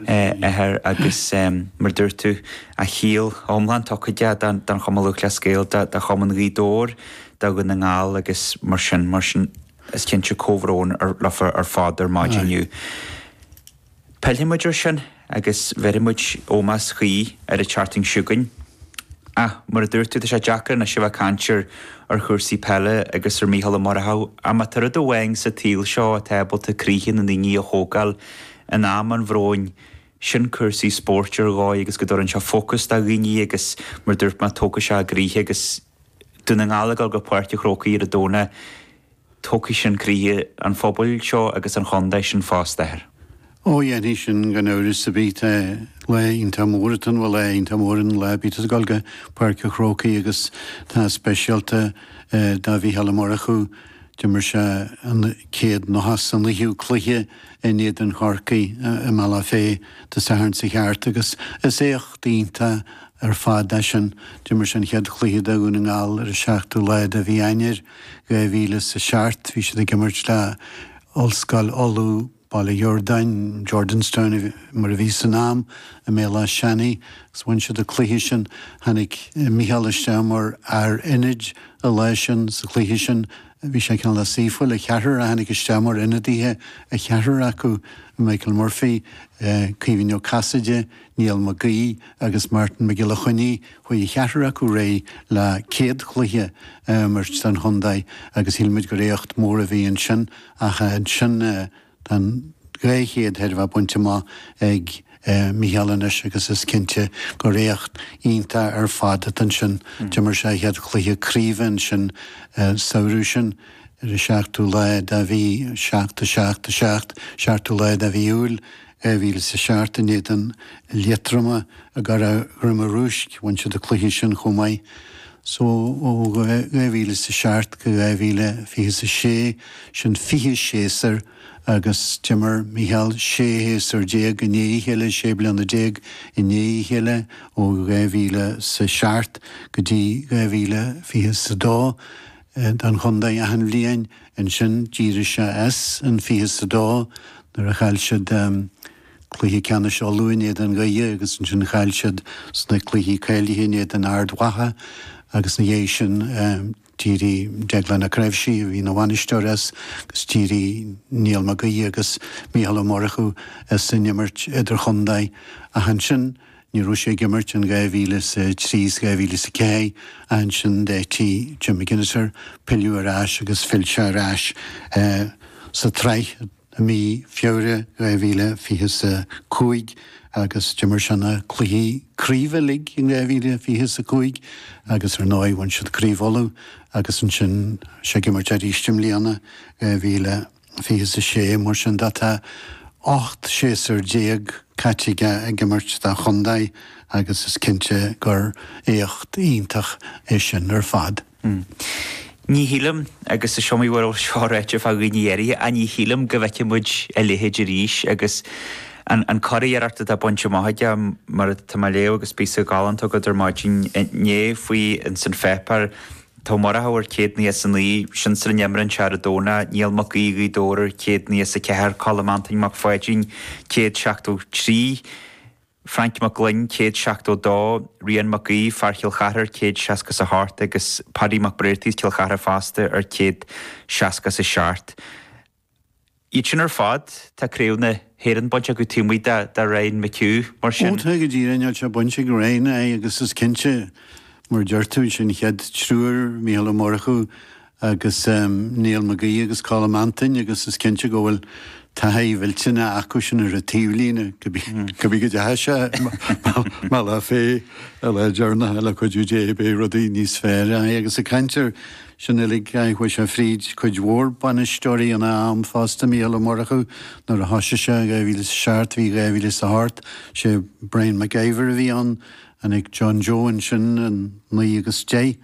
athair agus, mar a dúirt tú, a shaol iomlán tugtha don Chumann Lúthchleas Gael, do Chumann Ghaoth Dobhair, do Dhún na nGall agus mar sin, mar sin. Is cinnte comhbhrón leo ar fad ar maidin inniu. Pillfidh muid air sin agus bhéarfaidh muid ómós cuí ar an Chrócaigh chugainn. Ach, mar a dúirt tú, tá sé deacair anois a bheith ag caint ar chúrsaí peile agus ar Mhícheál Ó Murchú ach má tá rud amháin sa tsaol seo atá ábalta croíthe na ndaoine a thógáil In am an bhróin, sin cúrsaí spóirt ar dhóigh agus go dtabharann sé fócas do dhaoine agus mar dúirt mé, tógfaidh sé a gcroíthe agus Dún na nGall ag dul go Páirc a' Chrócaigh ar an Domhnach, tógfaidh sin croíthe an phobail seo agus an chontae seo fosta, ar. Ó, dhéanfaidh sin gan amhras, a Bhid, lá iontach mór atá ann, bhuel, lá iontach mór aon lá a bítear ag dul go Páirc a' Chrócaigh agus tá speisialta do Mhícheál Ó Murchú, d'imir sé a chéad nócha a naoú cluiche. in éadan Chorcaí i mBaile Átha Féith de Sathairn sa cheart agus is éacht iontach ar fad é sin. D'imir sé an chéad chluiche do Dhún na nGall ar an seachtú lá de mhí Eanáir dhá mhíle is a seacht, bhí siad ag imirt le hOllscoil Uladh, Baile Shiurdáin, Jordanstown mar a bhí san am, i mBéal Áth Seanaidh agus bhain siad an cluiche sin. Tháinig Micheál isteach mar fhear ionaid an lá sin, sa chluiche sin, Bhí sé ceann suimiúil, an ceathrar, a tháinig isteach mar ionadaithe, a cheathrar acu, Michael Murphy, Caoimhín Ó Casaide, Niall Mac Gaoith agus Martin McElhinney, chuaigh an ceathrar acu ar aghaidh le céad cluiche a imirt don chontae agus shíl muid gur éacht mór a bhí ansin ach ansin Tá an dhá chéad a bheith bainte amach ag Mícheál anois agus is cinnte gur éacht iontach ar fad atá ansin. D'imir sé a chéad chluiche craoibhe ansin an samhradh sin, ar an seachtú lá de mhí, seacht, a seacht, a seacht, seachtú lá de mhí Iúil, dhá mhíle is a seacht, in éadan Liatroma i gCora Droma Rúisc, bhain siad an cluiche sin chomh maith. So ó 2007 go 2026, sin fiche séasur agus d'imir Micheál sé shéasúr déag i ndiaidh a chéile, sé bliana déag i ndiaidh a chéile, ó dhá mhíle 's a seacht go dtí dhá mhíle fiche 's a dó, don chontae achan bhliain. Ansin d'éirigh sé as i bhfiche 's a dó nuair a chaill siad, Cluiche Ceannais Uladh in éadan Dhoire agus ansin chaill siad sna cluichí cáilithe in éadan Ard Mhacha agus ina dhiaidh sin d'éirigh Deaglán Ó Cnaimhsí, a bhí ina bhainisteoir, as agus d'éirigh Niall Mag Aoidh agus Micheál Ó Murchú as an imirt idirchontae ach ansin ní raibh sé ag imirt in 2003 is 2004 ach ansin d'eitigh Jim McGuinness air pilleadh ar ais agus phill sé ar ais sa tsraith. I mí Feabhra 2020 is a cúig agus d'imir sé na cluichí craoibhe uilig in 2020 is a cúig agus ar ndóigh bhain siad Craobh Uladh agus ansin sé ag imirt arís i mbliana, 2020 is a sé, mar sin de tá ocht séasúr déag caite aige ag imirt dá chontae agus is cinnte gur éacht iontach é sin ar fad. Hm. Ní shílim, agus is iomaí uair a bhfuil seo ráite fá dhaoine áirithe, á ní shílim go bhfeicfidh muid a leithéid arís agus an churiarracht atá bainte amach aige, mar tá mé ag léamh agus píosa galánta agat ar maidin inné faoi in san pháipéar, Tá Murchú ar chéad nócha is a naoi, sinsir an t-imreoir ar a dó ná, Niall Mac Aoidh Ghaoth Dobhair ar chéad nócha is a ceathair, Colm Antoin Mac Pháidín céad seachtó trí, Frainc Mag Fhloinn, céad seachtó dó, Rián Mac Aoidh, fear Chill Charthaigh ar chéad seasca is a hocht, agus Padaí Mac Breartaí as Cill Charthaigh fosta, ar chéad seasca is a seacht. Iad sin ar fad, tá Craobh na hÉireann bainte acu taobh amuigh de Ryan McHugh, mar Ó, sin. tá go díreach, níl sé bainte ag Ryan, aye, agus is cinnte, mar a deir tú, ansin an chéad triúr, Mícheál Ó Murchú, agus Niall McGee agus Colm Antain agus is cinnte go bhfuil taithí mhillteanach acu sin ar an taobhlíne go bhí go dteachaidh sé mar lá fé a lá dearnadh le cuidiú Dé beidh rudaí níos fearr á agus ag caint ar sin uilig á chuaidh sé fríd cuid mhór bainisteoirí ina am fosta Mícheál Ó Murchú nuair a thoisigh sé 2000 is a seacht bhí 2000 is a hocht is é Brian McIver a bhí ann tháinig John Joe ansin in 9 agus 10.